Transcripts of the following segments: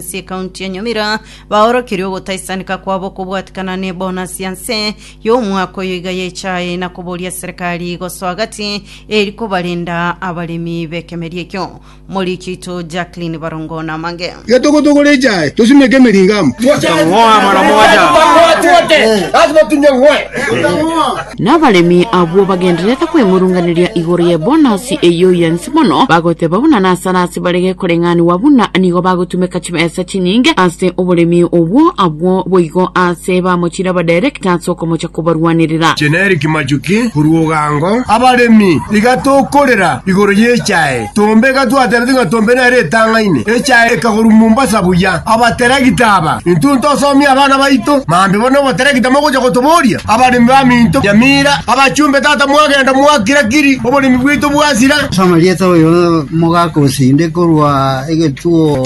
ase ekaunti ya Nyamira baorokeire ogotaisanika kwabo kobwatikana ne bonus ya nse y'omwaka oyo iga yaechae na koboria serikali gosoa gati eri kobarenda abaremi b'ekemeria ekio. Moriki oito Jacqueline Barongo namange. Getogotogora echae tosimeke emeringa amo. Totang'oa amana moja. Lazima tunyang'oe. Na abaremi abwo bagendererete kwemurunganeria igoro y'ebonasi eyio y'ense mono, bagoteeba buna nasare ase bare gekoreng'aniwa buna nigo bagotumeka chibesa chinyinge ase oboremi obwo, abwo boigo aase bamochire abadairekta ase okomocha kobarwanerera. Generic Majuki korwa Ugango. Abaremi, iga tokorera igoro y'echae Tombe gatwaterete ng'a Tombe nere etang'aine echae ekagorwa Mombasa buya. Abateregita aba intwe ntosomie abana baito mambe bono oboteregita mogocha gotoboria abaremi ba minto Nyamira abachumbe tata mwagenda mwakira kiri oboremi bwaito bwasira. Soma rieta oyo mogaka osinde korwa egetuo.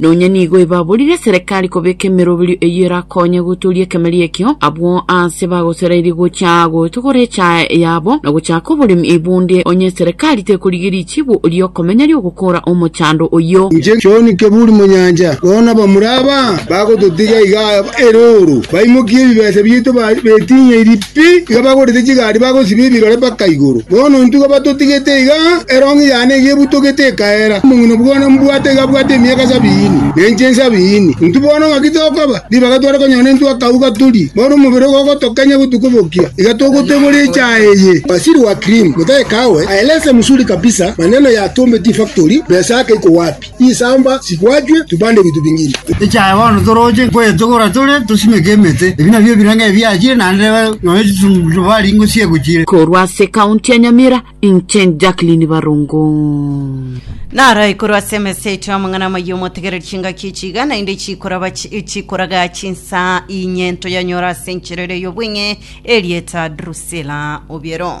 Nonya nigo ebaborire Serekari kobeka emeroberio eyio erakonye gotoria ekemeria ekio, abwo aase bagoserairie gochia gotogora echa yabo na gochaka oboremi, bonde onye Serekari tekorigeria richibo ri'okomenya ri'ogokoora omochando oyio. Inche John Keburi Monyancha, bono nabamura aba bagototiga iga erooro, baimokie ebibesa biaito betinyeirie. Pi iga bagorete chigari bagosiba ebirore mpaka igoro. Bono intuko batotigete iga, erong'i yane iga ebutogete ekaera. Omong'ina bwo nambwate iga abwate emiaka sabiini, na inche nsabiini. Intwe bono ng'aki tokoba? Ribaga tware konyora nintwe akauga turi, bono omobere ogo ogotokenya gotuko bokia, iga togotegora echaha eye. Waziri wa Cream, Mutahi Kagwe, aeleza mzuri kabisa maneno ya Tumbe Tea Factory, pesa yake iko wapi? Chisamba chigwachwe, tubande binto bing'ina. Ekiagera bono toroche kwetogora tore, tosimeke emete. Ebi nabio ebiranga ebiachire, naende neba nonya chitundubari ngochia egochire. Korwa ase County ya Nyamira, inche Jacqueline Barongo. Naro ekorwa ase emeseti y'amang'ana amayia omotegereri chingaki echi iga naende chikoraba chi- chikoraga chinsa inye ntoyanyore ase enchera ere y'obweng'e erieta Drusilla Obiero.